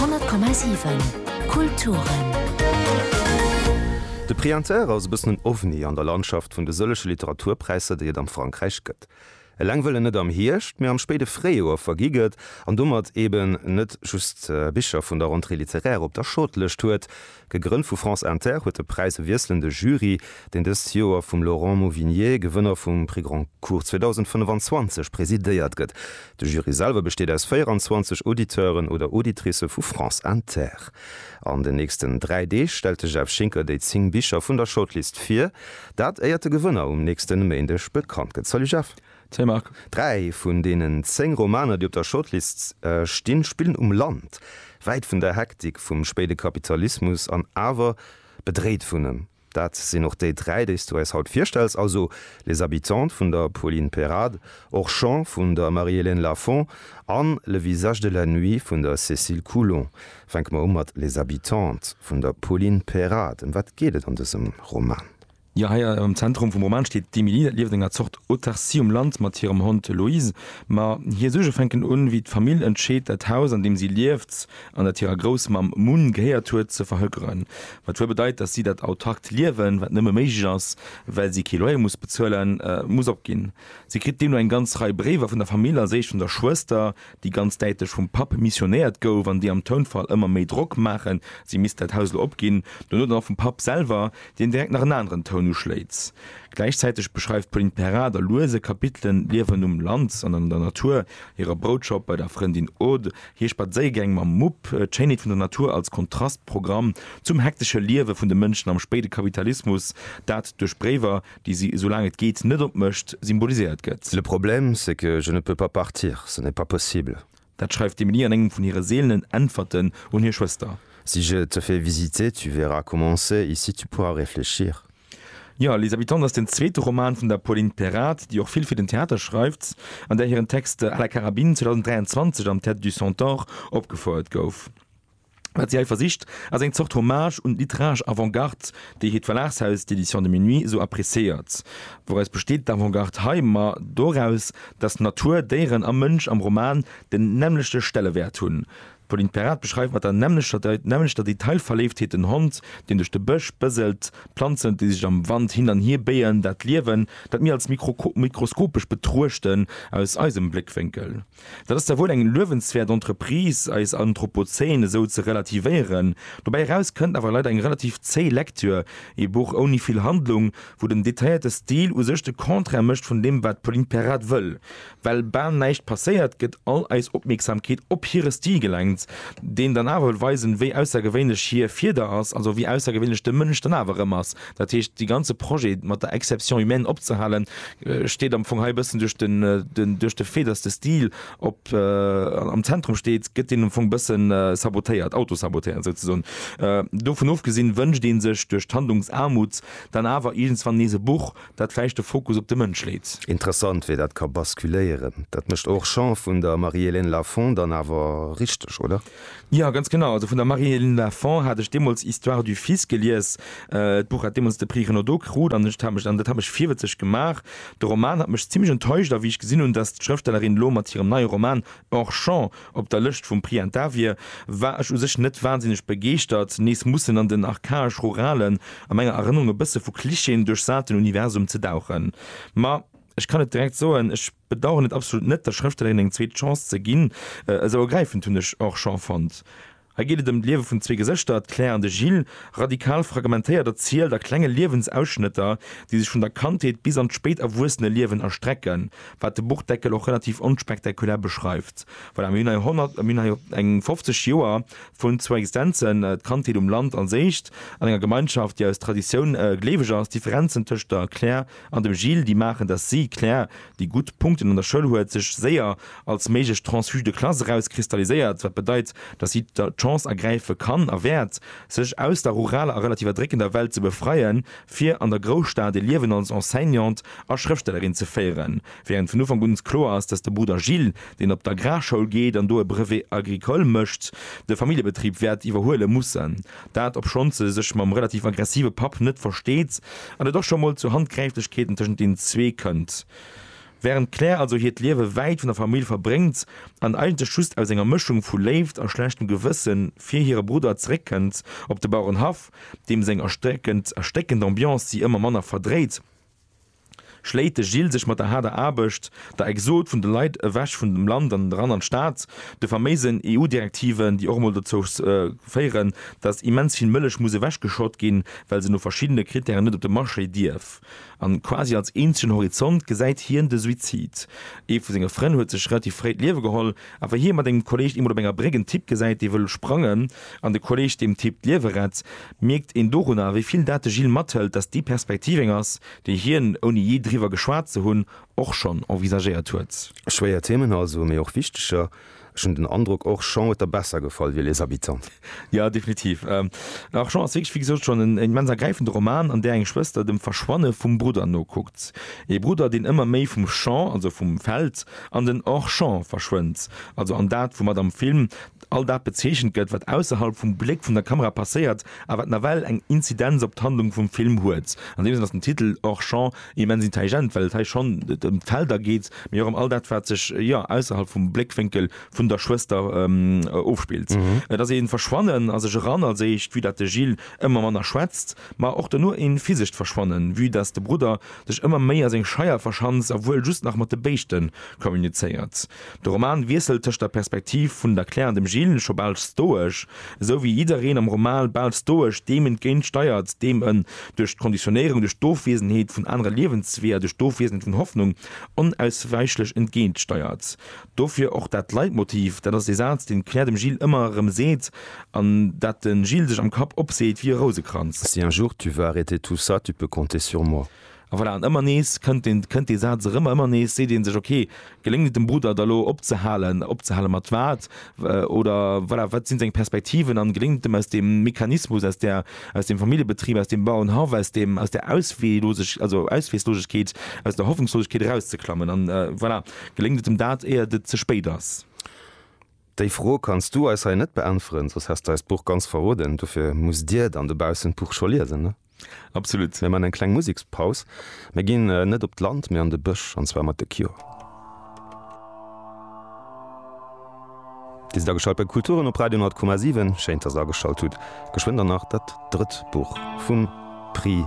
100,7 Kulturen. De Prix Inter ass e bëssen en Ovni an der Landschaft vun de sëllege Literaturpräisser, déi et am Frankräich gëtt. Eleng wëll en net am Hierscht, mä am spéide Fréijoer vergi gëtt an domat eben net just Bicher vun der Rentrée littéraire op der Shortlëscht huet, Gegrënnt vu France Inter, huet de Präis e wiesselende Jury, deen dëst Joer vum Laurent Mauvignier, Gewënner vum Prix Goncourt 2025, presidéiert gëtt. De Jury selwer besteet aus 24 Auditeuren oder Auditricë vu France Inter. An den nächsten dräi Deeg stellt de Jeff Schinker déi zéng Bicher vun der Shortlist vir. Dat éiert de Gewënner um nächste Méindeg bekannt gëtt. Salut Jeff. Salut Marc. Dräi vun deenen zéng Romaner, déi op der Shortlist stinn, spillen um Land, wäit vun der Hektik vum spéide Kapitalismus an awer bedréit vun em. Dat sinn och déi dräi, déi s du eis haut virstells, also Les Habitantes vun der Pauline Perrade, Orchamps vun der Marie-Hélène Lafon a Le visage de la nuit vun der Cécile Coulon. Fänke mer u mat Les Habitantes vun der Pauline Perrade. Ëm wat geet et an dësem Roman? Jo, hei am Zentrum vum Roman steet d'Emily. Dat lieft enger Zort Autarcie um Land mat hirem Hond Loïse. Ma hir Suerge fänken un, wéi d'Famill entscheet, dat Haus, an deem si lieft an dat hirer Groussmamm Mun gehéiert huet, ze verhökeren. Wat wuel bedeit, datt si dat autarkt Liewen, wat nëmme méiglech ass, well si kee Loyer muss bezuelen, muss opginn. Si kritt deemno eng ganz Rei Bréiwer vun der Famill a séischt vun der Schwëster, déi ganz däitlech vum Papp missionéiert gouf an déi am Tounfall ëmmer méi Drock maachen, si misst dat Haus elo opginn, dono dann och vum Papp selwer, deen direkt nach en aneren Toun uschléit. Gläichzäiteg beschreift d'Pauline Perard a luese Kapitelen d'Liewen um Land an an der Natur, hire Broutschopp bei der Frëndin Aude, hir Spadséiergäng mam Mupp, d'Schéinheet vun der Natur als Kontrastprogramm zum hektesche Liewe vun de Mënschen am spéide Kapitalismus, dat duerch Bréiwer, déi si, esou laang et geet, net op mécht, symboliséiert gëtt. Le problème, c'est que je ne peux pas partir, ce n'est pas possible. Dat schreift d'Emilie an engem vun hire seelenen Äntwerten un hir Schwëster. Si je te fais visiter, tu verras comment c'est, ici tu pourras réfléchir. Jo, Les Habitants ass den zweete Roman vun der Pauline Perrard, déi och vill fir den Theater schreift an där hiren Text à la carabine 2023 am Théâtre du Centaure opgefouert gouf. Wat si hei versicht, ass eng Zort Hommage un d'literaresch Avant-Garde, déi hiert Verlagshaus, d'Éditions de Minuit, sou appréciéiert. Wouraus besteet d'Avant-Garde hei? Ma doraus, datt Natur, Déieren a Mënsch am Roman den nämmlechte Stellewäert hunn. D'Pauline Perrard beschreift mat der nämmlechter Detailverléiftheet den Hond, deen duerch de Bësch bëselt, d'Planzen, déi sech am Wand hin an hier béien, dat Liewen, dat mir als mikroskopesch betruechten, aus eisem Bléckwénkel. Dat ass da wuel eng luewenswäert Entreprise, eis Anthropozän esou ze relativéieren. Dobäi eraus kënnt awer leider eng relativ zéi Lektür, ee Buch ouni vill Handlung, wou den detailléierte Stil u sech de Contraire mécht vun deem, wat d'Pauline Perrade wëll. Well bal näischt passéiert, gëtt all eis Opmierksamkeet op hire Stil gelenkt, deen dann awer wëll weisen, wéi aussergewéinlech hir Fieder ass, also wéi aussergewéinlech de Mënsch dann awer erëm ass, Dat heescht, dee ganze Projet mat der Exception humaine opzehalen, steet am Fong hei e bëssen duerch den, duerch de Fait, dass de Stil op, am Zentrum steet, gëtt deen am Fong e bësse sabotéiert, autosabotéiert souzesoen. Dovun ofgesinn, wënscht ee sech duerch d'Handlungsaarmut dann awer iergendswann nees e Buch, dat vläicht de Fokus op de Mënsch leet. Interessant, wéi dat ka basculéieren. Dat mécht Orchamps vun der Marie-Hélène Lafon dann awer richteg, oder? Jo, ganz genau. Also vun der Marie-Hélène Lafon hat ech deemools Histoire du fils gelies. D'Buch hat deemools de Prix Renaudot krut an ech hat mech, an dat hat mech virwëtzeg gemaach, de Roman hat mech zimlech enttäuscht. A wéi ech gesinn hunn, datt d'Schrëftstellerin elo mat hirem neie Roman Hors Champ op der Lëscht vum Prix Inter wier, war ech u sech net wansinneg begeeschtert, nees mussen an den archaesch-ruralen, a menger Erënnerung e bësse vu Klischeeën duerchsaten Universum ze dauchen. Ma. Ech kann et direkt soen, ech bedauern et absolut net, der Schrëfstellerin eng zweet Chance ze ginn. Esou ergräifend hunn ech och Jean fonnt. Hei geet et ëm d'Liewe vun zwee Gesëschter, d'Claire an de Gilles, radikal fragmentéiert erzielt a klenge Liewensausschnëtter, déi sech vun der Kandheet bis an d'spéit Erwuesseneliewen erstrecken, wat de Buchdeckel och relativ onspektakulär beschreift. Voilà, mir hunn hei 100, mir hunn hei eng 50 Joer vun zwou Existenzen, d'Kandheet um Land als éischt, an enger Gemeinschaft, déi aus Traditioun gleeweg ass, d'Differenzen tëscht der Claire, An dem Gilles déi maachen, dass si, Claire, déi gutt Punkten an der Schoul huet, sech séier als méiglech transfuge de classe erauskristalliséiert, wat bedeit, dass si d'Chance ergräife kann a wäert, sech aus der ruraler a relativ erdréckender Welt ze befreien, fir an der Grousstad e Liewen als Enseignante a Schrëftstellerin ze féieren. Wärend vun Ufank un kloer ass, dass de Brudder Gilles, deen op d'Agrarschoul geet an do e Brevet agricole mécht, de Familljebetrib wäert iwwerhuele mussen. Dat obschonn se sech mam relativ aggressive Papp net versteet an et och scho mol zu Handgräiflechkeeten tëschent deenen zwee kënnt. Wärend d'Claire also hiert Liewe wäit vun der Famill verbréngt an eigentlech just aus enger Mëschung vu Léift a schlechtem Gewësse fir hire Brudder zeréckkënnt op de Bauerenhaff, deem seng erstéckend Ambiance si ëmmer manner verdréit, schléit de Gilles sech mat der haarder Aarbecht, der Exod vun de Leit ewech vun dem Land an eran an d'Stad, de faméisen EU-Direktiven, déi och emol dozou féieren, datt immens vill Mëllech muss ewechgeschott ginn, well se no verschiddene Krittären net op de Marché dierf. An quasi als eenzegen Horizont gesäit hien de Suizid. Ee vu senge Frënn huet sech relativ fréi d'Liewe geholl, A wa hie mat engem Kolleg eemol op enger Bréck en Typ gesäit, dee wëll sprangen, an de Kolleg deem Typ d'Liewe rett, mierkt een dorunner, wéi vill dat de Gilles mathëlt, datt déi Perspektiv eng ass, déi hien, ouni jee driwwer geschwat ze hunn, och schonn envisagéiert huet. Schwéier Themen also, mee och wichteger. Ech hunn den Androck, Orchamps huet der besser gefall wéi Les Habitants. Jo, definitiv. Orchamps ass wierklech, wéi gesot, schonn en immens ergräifende Roman, an där eng Schwëster dem Verschwanne vum Brudder nokuckt. Ee Brudder, deen ëmmer méi vum Champ, also vum Feld, An den Hors-champ verschwënnt, also an dat, woumat am Film all dat bezeechent gëtt, wat ausserhalb vum Bléck vun der Kamera passéiert a wat nawell eng Inzidenz op d'Handlung vum Film huet. An deem Sënn ass den Titel Hors-champ immens intelligent, well et hei schonn ëm d'Felder geet, mee och ëm all dat, wat sech, jo, ausserhalb vum Bléckwénkel vun der Schwëster ofspillt. Et ass ee Verschwannen a sech eran, als éischt, vue dat de Gilles ëmmer manner schwätzt, ma och dono ee physescht Verschwannen, vue dass de Brudder sech ëmmer méi a seng Scheier verschanzt a wuel just nach mat de Béischte kommunizéiert. De Roman wiesselt tëscht der Perspektiv vun der Claire an dem Gilles, scho bal stoesch, esou wéi jiddereen am Roman bal stoesch deem entgéint steiert, deem en duerch d'Konditionéierung, duerch d'Ofwiesenheet vun anere Liewensweeër, duerch d'Ofwiesenheet vun Hoffnung onauswäichlech entgéint steiert. Dofir och dat Leitmotiv, dat ass dee Saz, deen d'Claire dem Gilles ëmmer erëm seet an dat de Gilles sech am Kapp opseet wéi e Rousekranz. Si un jour tu vas arrêter tout ça, tu peux compter sur moi. A voilà, an ëmmer nees kënnt deen, kënnt dee Saz erëm a ëmmer nees seet ee sech, okay, geléngt et dem Brudder da lo opzehalen, opzehale mat wat? Oder voilà, wat si seng Perspektiven an geléngt et em aus deem Mechanismus, aus där, aus deem Familljebetrib, aus deem Bauernhaff, aus deem, aus där Ausweeloseg, also Ausweeslosegkeet, aus der Hoffnungslosegkeet erauszeklammen? An voilà. Geléngt et em dat, éiert et ze spéit ass? Déi Fro kanns du eis hei net beäntweren, soss häss de eis d'Buch ganz verroden. Dofir musst dir dann dobaussen d'Buch scho liesen, ne? Absolut. Mir man eng kleng Musekspaus. Mir ginn net op d'Land, mee an de Bësch, an zwar mat The Cure. Dir sidd ageschalt bei Kulturen op Radio 10,7. Schéin, dass der ageschalt hutt. Geschwënn dann nach dat drëtt Buch vum Prix.